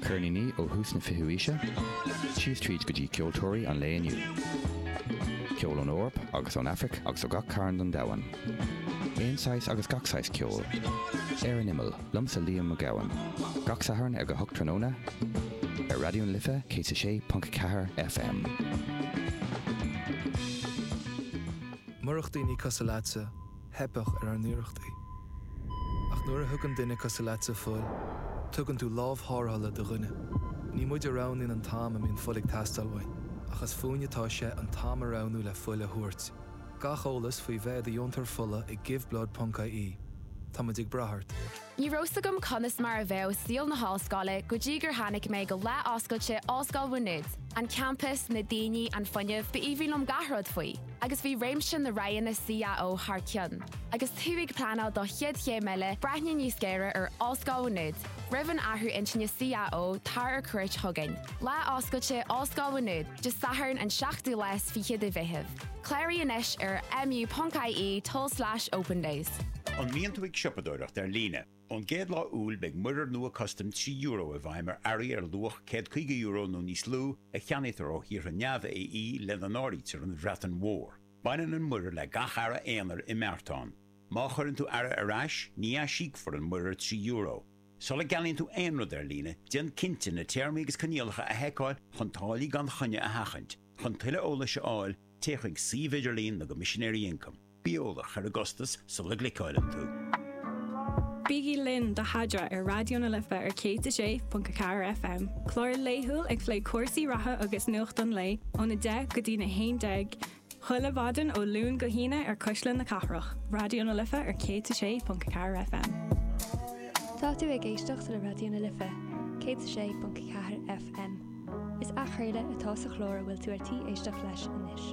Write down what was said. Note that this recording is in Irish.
Ceirníní ó thús na fichiú aoise síos tríd go dtí ceoltóirí an lae inniu. Ceol ón Eoraip agus ón Afraic agus ó gach cearn den domhan. Aon saghas agus gach saghas ceoil. Ar an Imeall, liomsa Liam Mac Gabhann. Gach Satharn ag a hocht tráthnóna ar Raidió na Life 106.4 FM. Murach daoine cosúil leatsa. theipfeadh ar ár n-iarrachtaí. Ach nuair a thugann duine cosúil leatsa fuil, tugann tú lámh thárrthála do dhuine. Ní muid a roghnaíonn an t-am a mbíonn fuil ag teastáil uainn, ach is fúinne atá sé an t-am a roghnú le fuil a thabhairt. Gach eolas faoi bheith i do dheontóir fola ag Give Blood ponc IE Tá muid ag brath ort! Ní raibh 's agam conas mar a bheadh saol na hollscoile go dtí gur tháinig mé go lá oscailte Ollscoil Mhá Nuad, an campas, na daoine, an fuinneamh, b'aoibhinn liom gach rud faoi, agus bhí réimse na roghanna CAO thar cionn, agus tú ag pleanáil do chéad chéim eile, breathnaigh níos géire ar Ollscoil Mhá Nuad, roimh an athrú intinne CAO, tar ar cuairt chugainn, Lá Oscailte Ollscoil Mhá Nuad, Dé Sathairn an 7ú lá 's 20ú de Mheitheamh. Cláraigh anois ar mu.ie tulslais opendays. An mbíonn tú ag siopadóireacht ar líne? Ón gcéad lá Iúil beidh muirear nua custaim trí euro i bhfeidhm ar earraí ar luach céad caoga euro nó níos lú a cheannaítear ó thíortha neamh-AE lena n-áirítear an Bhreatain Mhór. Baineann an muirear le gach earra aonair i mbeartán. Má chuireann tú earra ar ais, ní aisíocfar an muirear trí euro. Sula gceannaíonn tú aon rud ar líne, déan cinnte na téarmaí agus coinníollacha a sheiceáil chun táillí gan choinne a sheachaint. Chun tuilleadh eolais a fháil, téigh chuig suíomh idirlín na gCoimisinéirí Ioncaim. Bí eolach ar an gcostas sula gcliceáileann tú. Bígí linn do Adhmhaidin ar Raidió na Life ar 106.4 FM, clár laethúil ag plé cúrsaí reatha agus nuacht an lae ón 10:00 go dtí'n 11:00 chuile mhaidin ó Luan go hAoine ar Cuisle na Cathrach, Raidió na Life ar 106.4 FM. Tá tú ag éisteacht le Raidió na Life, 106.4 FM. Is athchraoladh atá sa chlár a bhfuil tú ar tí éisteacht leis anois.